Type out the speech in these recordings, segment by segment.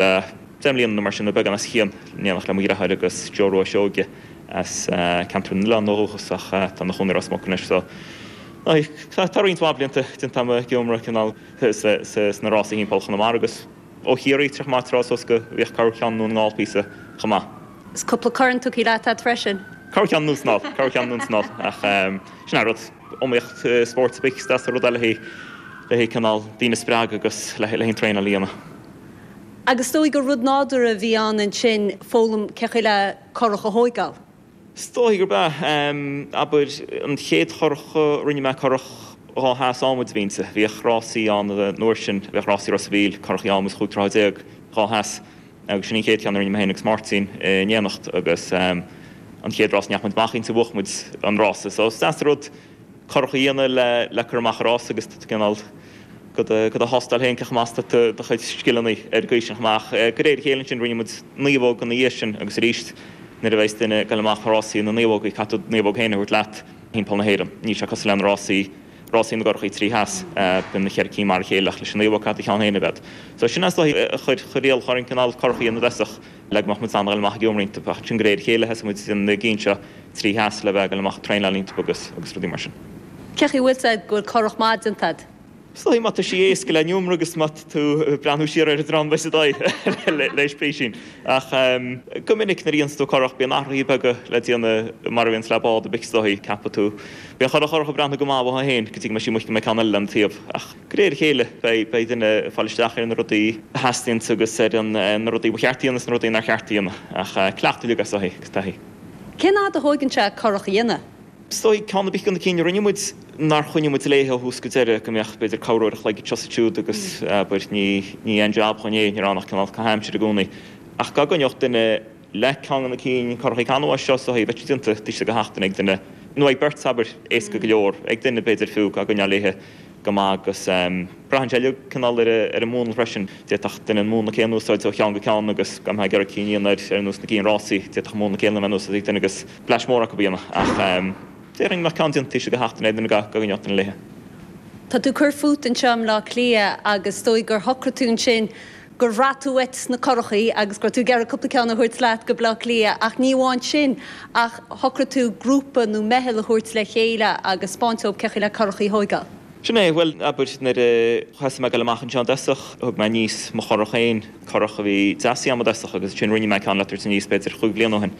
Tá deich mbliana nó mar sin, nó beagán os a chionn, in éineacht le mo dhreatháir agus Joe Rua Seoige as ceantar na nOileán ó dhúchas ach tá ina chónaí i Ros Muc anois so tá roinnt mhaith blianta den t-am ag iomramh cineál sna rásaí thimpeall Chonamara agus ó Chiarraí tráthnóna maith tráth so bhíodh Cabhar Ceann Dún na nGall píosa chomh maith. Is cúpla corn tugtha leat a'd freisin? Cabhar Ceann Dún na nGall, Cabhar Ceann Dún na nGall ach sin é an rud. iomaíocht spóirt ar bith is deas an rud é le haghaidh cineál daoine a spreagadh agus le haghaidh an traenáil a dhéanamh. Agus is dóigh gur rud nádúrtha a bhí ann ansin foghlaim cé chaoi le currach a thóigeáil? Is dóigh gurb ea. Abair an chéad churrach a rinne mé, currach dhá sheas ádhmaid a bhí inti. Bhíodh rásaí ann an uair sin, bhíodh rásaí Ros a' Mhíl, currachaí ádhmaid chúig troithe déag, dhá sheas. Agus sin an chéad cheann a rinne mé féin agus Máirtín in éineacht agus an chéad rás a ndeachaigh muid amach inti bhuaigh muid an rás. Is deas an rud currach a dhéanamh le cur amach i rás agus tú cineál do do thástáil féin cé chomh maith is atá tú do chuid scileanna ar an gcaoi sin chomh maith. De réir a chéile ansin rinne muid naomhóg ina dhiaidh sin agus arís nuair a bheas duine ag dul amach i rásaí na naomhógaí caithfidh tú do naomhóg féin a thabhairt leat. Thimpeall na hÉireann níl sé cosúil le na rásaí. rásaí na gcurachaí trí sheas. Bíonn na ceithre cinn mar a chéile ach leis an naomhóg caithfidh do cheann féin a bheith agat. So sin an dóigh a chuir Riail Chorn Cineál Currachaí an Bhreisach le go mbeadh muid in ann a ghoil amach ag iomramh roinnt timpeall. Ansin de réir a chéile thosaigh muid ag na gcinn seo trí sheas le bheith ag goil amach ag traenáil roinnt timpeall agus agus rudaí mar sin. Cé chaoi bhfuil a fhios agat go bhfuil curach maith déanta agat? Is dóigh má tá sí éasca le n-iomramh agus má tá tú ag breathnú siar ar an dream beidh sé dóigh le le sprícín. Ach go minic nuair a dhéananns tú curach bíonn athruithe beaga le déanamh mar a bhíonns le bád ar bith is dóigh cheapfadh tú. Bheadh an churach ag breathnú go maith uaithi féin go dtí go mbeidh sí amuigh go mbeidh ceann eile lena taobh ach de réir a chéile beidh duine ag fáil isteach ar na rudaí a theastaíonn agus ar na rudaí ba cheart a dhéanamh is na rudaí nár cheart a dhéanamh ach cleachtadh uilig is dócha agus taithí. Cén fhad a thógann sé curach a dhéanamh? Is dóigh, ceann ar bith de na cinn a rinne muid, nár choinnigh muid léi ó thús go deireadh, go mbeadh b'fhéidir corruair a chloig anseo 's ansiúd agus abair, ní aon jab againn é, ní raibh ann ach cineál caitheadh aimsire i gcónaí ach dá gcoinneodh duine, Léithe, ceann de na cinn curachaí canbhás seo, bheadh sí déanta taobh istigh de sheachtain ag duine nó ag beirt abair, éasca go leor, ag duine b'fhéidir fiú ach coinneáil léithe go maith agus braitheann sé uilig cineál ar an múnla freisin. D'fhéadfadh duine an múnla céanna a úsáid ó cheann go ceann agus gan ag iarraidh cinn a dhéanamh abair ar nós na gcinn rásaí, d'fhéadfadh múnla céanna a bheith in úsáid ag duine agus bleaist mór acu a dhéanamh ach déarfainn go mbeadh ceann déanta taobh istigh de sheachtain ag duine dá gcoinneodh duine léithe. Tá tú ag cur fút anseo i mBleá Cliath agus is dóigh gur shocraigh tú ansin gur bhraith tú uait na curachaí agus go raibh tú ag iarraidh cúpla ceann a thabhairt leat go Baile Átha Cliath ach ní amháin sin ach shocraigh tú grúpa nó meitheal a thabhairt le chéile agus 'speáint dhób cé chaoi le curachaí a thóigeáil. Sin é, bhuel, abair, nuair a thosaigh mé ag dul amach anseo i dtosach, thug mé aníos mo churach féin, curach a bhí deasaithe agam i dtosach agus ansin rinne mé ceann le tabhairt aníos b'fhéidir chúig bhliana ó shin.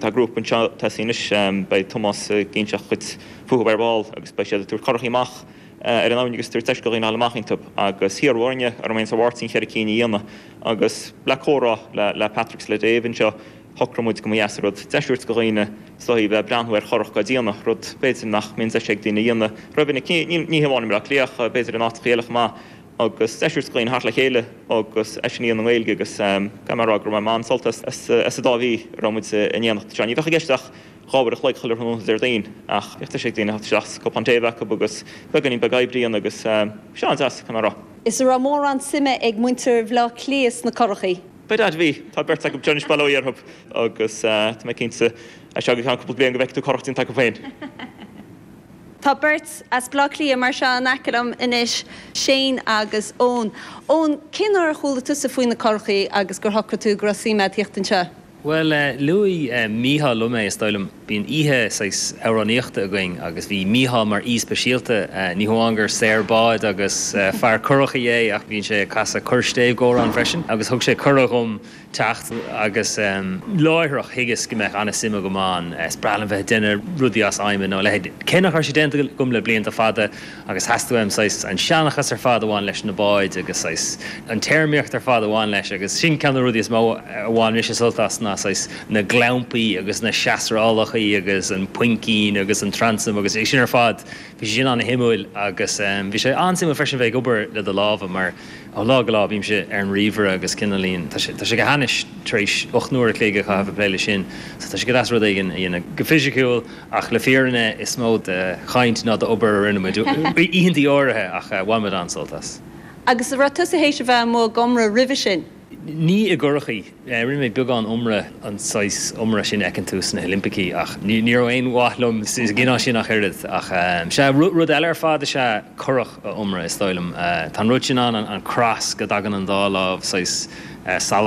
Tá grúpa anseo tosaithe anois, beidh Tomás ag inseacht dhuit fúthu ar ball agus beidh siad ag tabhairt curachaí amach ar an abhainn agus tabhairt deis do dhaoine a dhul amach iontub agus hiarradh orm héin is ar Mháirtín cheithre cinn a dhéanamh agus le comhrá le Patrick 's le Dave anseo shocraigh muid go mba dheas a rud deis a thabhairt do dhaoine sna hí bheith ag breathnú ar churach á déanamh rud b'fhéidir nach mbíonn deis ag daoine a dhéanamh rómhinic ní ní ní hamháin i mBleá Cliath b'fhéidir in áiteacha eile chomh maith agus deis a thabhairt do dhaoine theacht le chéile agus é sin trí mheán na Gaeilge agus caithfidh mé a rá gur bhain muid an-sult as as as an dá mhí a raibh muid in éineacht anseo ní bhíodh i gceist ach dhá uair a chloig chuile thráthnóna Déardaoin ach bhíodh deis ag daoine a theacht isteach is cupán tae a bheith acu agus beagáinín beag oibre ann agus bhí sé an-deas, caithfidh mé a rá. Is a raibh mórán suime ag muintir Bhaile Átha Cliath sna curachaí? By dad, bhí, tá beirt acu anseo anois, bail ó Dhia orthub agus tá mé cinnte as seo go ceann cúpla bliain go bhfeicfidh tú curach déanta acu féin. Tá beirt as Baile Átha Cliath mar seo in aice liom anois, Shane agus Eoin. Eoin, cén uair a chuala tusa faoi na curachaí agus gur shocraigh tú go raibh suim a'd theacht anseo? Bhuel, luaigh Mícheál liom é, is dóigh liom. Bíonn oíche saghas amhránaíochta againn agus bhí Mícheál mar aoi speisialta. Ní hamháin gur saor bád agus fear curachaí é ach bíonn sé ag casadh corrstéibh d'amhrán freisin agus thug sé cuireadh dhom teacht agus láithreach thuigeas go mbeadh an-suim agam ann. Is breá liom bheith ag déanamh rudaí as adhmad nó a leithéid, cé nach raibh sé déanta agam le blianta fada. Agus theastaigh uaim saghas an seanchas ar fad a bhain leis na báid agus saghas an téarmaíocht ar fad a bhain leis agus sin ceann de na rudaí is mó a bhain mise sult as ná saghas na gclampaí agus na seasrálacha agus an puimcín agus an transam agus sin ar fad. Bhí sé sin an-suimiúil agus bhí sé an-suimiúil freisin bheith ag obair le do lámha mar ó lá go lá bímse ar an ríomhaire agus cineáilín tá sé tá sé go hainnis tar éis ocht n-uair a chloig a chaitheamh ag plé leis sin so tá sé go deas rud éigin a dhéanamh go fisiciúil Ach le fírinne is mó de chaint ná d'obair a rinne muid oícheantaí áirithe ach bhain muid an-sult as. Agus raibh tusa théis a bheith amuigh ag iomradh roimhe sin? Ní i gcurachaí. Rinne mé beagán iomradh, an saghas iomradh sin a fheiceann tú sna hOilimpicí, ach ní raibh aon mhaith liom sa gcineál sin ach oiread. Ach sea, rud eile ar fad is ea curach a iomradh, is dóigh liom. Tá an rud sin ann, an cross, go dtagann an dá lámh saghas salach.